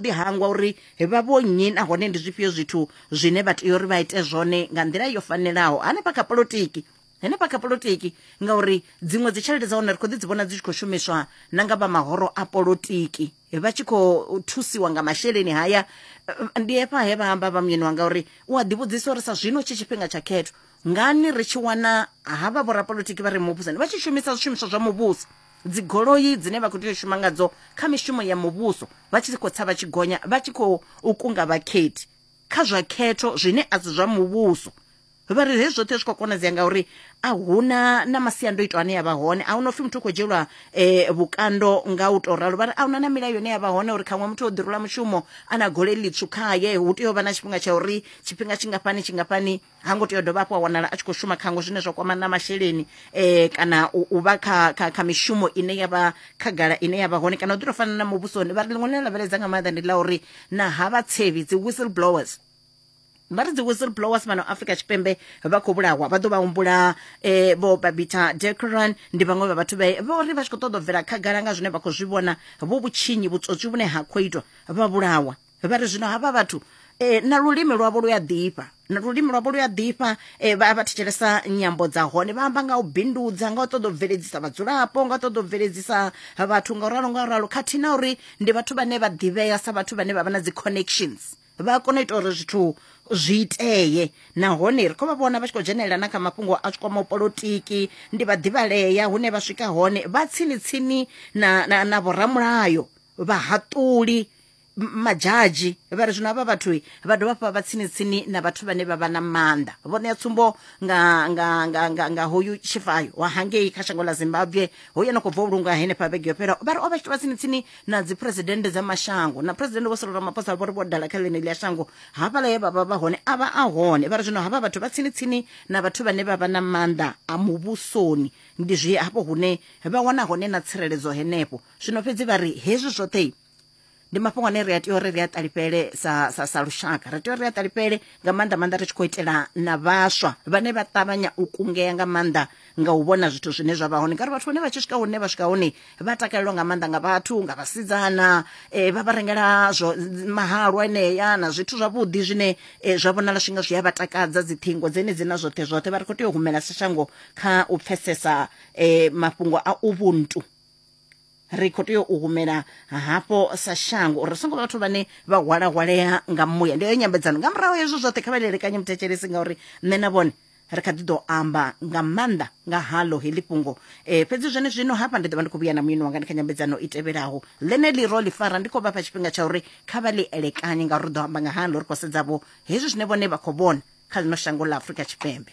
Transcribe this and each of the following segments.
ḓi hangwa uri vha vho nnyi nahone ndi zwifhio zwithu zwine vha tea uri vha ite zwone nga nḓila yo fanelaho hanefha kha polotiki henefha kha polotiki ngauri dziṅwe dzi tshelede dza hone ri khou ḓi dzi vhona dzi tshi khou shumiswa na nga vha mahoro a polotiki vha tshi khou thusiwa nga masheleni haya ndi hafha he vha amba vha muyeni wanga uri u a ḓivhudzisa uri sa zwino tshi tshifhinga tsha khetho ngani ri tshi wana havha vhorapolotiki vha re muvhusoni vha tshi shumisa zwishumiswa zwa muvhuso dzigoloi dzine vha khou tea u shuma ngadzo kha mishumo ya muvhuso vha tshi khou tsa vha tshi gonya vha tshi khou kunga vhakhethi kha zwa khetho zwine a si zwa muvhuso vha ri hezwi zwoṱhe zwi khou konadzea ngauri a huna na masiandoitwa ane ya vha hone a huna upfhi muthu u khou dzhielwa um vhukando nga u tou ralo vha ri a huna na milayo ine ya vha hone uri khaṅwe muthu o ḓirula mushumo a na gole ḽitswu khaye hu tea u vha na tshifhinga tsha uri tshifhinga tshingafhani tshingafhani ha ngo tea u dovha hafhu a wanala a tshi khou shuma khango zwine zwa kwama na masheleni um kana u vha kha kha kha mishumo ine ya vha khagala ine ya vha hone kana u ḓi tou fana na muvhusoni vha ri ḽiṅwe ḽine lavheledza nga maanḓa ndi ḽa uri na ha vhatsevhi dzi whistle blowers vha ri dzi whistle blowers fhano afrika tshipembe vha khou vhulawa vha ḓo vha humbula eh, vho babita decran ndi vhaṅwe vha vhathu vhe vho ri vha tshi khou ṱoḓa u bvela khagala nga zwine vha khou zwi vhona vho vhutshinyi vhutswotswi vhune ha khou itwa vha vhulawa vha ri zwino havha vhathu e, na lulimi lwavho lu a ḓifha na lulimi lwavho lu a ḓifha e, vha vha thetshelesa nyambo dza hone vha amba nga u bindudza nga u ṱoḓa u bveledzisa vhadzulapo nga u ṱoḓa u bveledzisa vhathu nga u ralo nga u ralo khathihi na uri ndi vhathu vhane vha ḓivhea sa vhathu vhane vha vha na dzi connections vha a kona u ita uri zwithu zwi itee nahone ri khou vha vhona vha tshi khou dzhenelela na kha mafhungo a tshi kwamaho polotiki ndi vhaḓivhalea hune vha swika hone vha tsini tsini na, na, na vhoramulayo vhahaṱuli madzhadzhi vha ri zwino havha vhathu vha dovha hafhu vha vha tsini tsini na vhathu vhane vha vha na maanḓa vho ṋea tsumbo nga, nga, nga, nga, nga hoyu tshifayo wa hangei kha shango ḽa zimbabwe hoyu no khou bva u lungwa henefha vhege yo fhelaho vha ri o vha tshi vha tsini tsini na dziphuresidennde dza mashango na phuresidennde vho solo ramaphosa vho ri vho dala kha ḽeneḽi ya shango hafhaḽa ye vha vha vha hone a vha a hone vha ri zwino havha vhathu vha tsini tsini na vhathu vhane vha vha na maanḓa a muvhusoni ndi zwi hafho hune vha wana hone na tsireledzo henefho zwino fhedzi vha ri hezwi zwoṱhe ndi mafhungo ane ri a tea uri ri a ṱalifhele sa, sa, sa lushaka ri tea uri ri a ṱalifhele nga maanḓa maanḓa ri tshi khou itela na vhaswa vhane vha ṱavhanya u kungea nga maanḓa nga u vhona zwithu zwine zwa vha hone ngauri vhathu vhane vha tshi swika hune vha swika hone vha takalelwa nga maanḓa nga vhathu nga vhasidzana eh, vha vha rengela zwo mahalwa enea na zwithu zwavhuḓi zwine eh, zwa vhonala swinga zwi a vha takadza dziṱhingo dzenedzi na zwoṱhe zwoṱhe vha ri khou tea u humela sa shango kha u pfesesa eh, mafhungo a ubuntu ri khou tea u humela hafho sa shango uri ri songo vhathu vhane vha hwalahwalea nga muya ndi heyo nyambedzano nga murahu hezwo zwoṱhe kha vha lelekanye muthetshelesi ngauri nṋe na vhone ri kha ḓi ḓo amba nga maanḓa nga halo heḽi fhungo um fhedzi zwone zwino hafha ndi ḓo vha ndi khou vhuya na muyeni wanga ndi kha nyambedzano i tevhelaho ḽeneḽi ro ḽi fara ndi khou vhafha tshifhinga tsha uri kha vha ḽi elekanye ngauri ri ḓo amba nga halo ri khou sedzavho hezwi zwine vhone vha khou vhona kha ḽino shango ḽa afurika tshipembe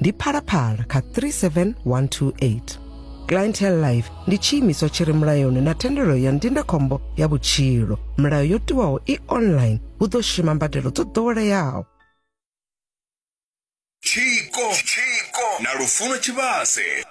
ndi phalaphala kha 37128 clientele life ndi tshiimiswa tshi re mulayoni na thendelo ya ndindakhombo ya vhutshilo milayo yo tiwaho i online hu ḓo shuma mbadelo dzo ḓoweleaho tshiko na lufuno tshivhase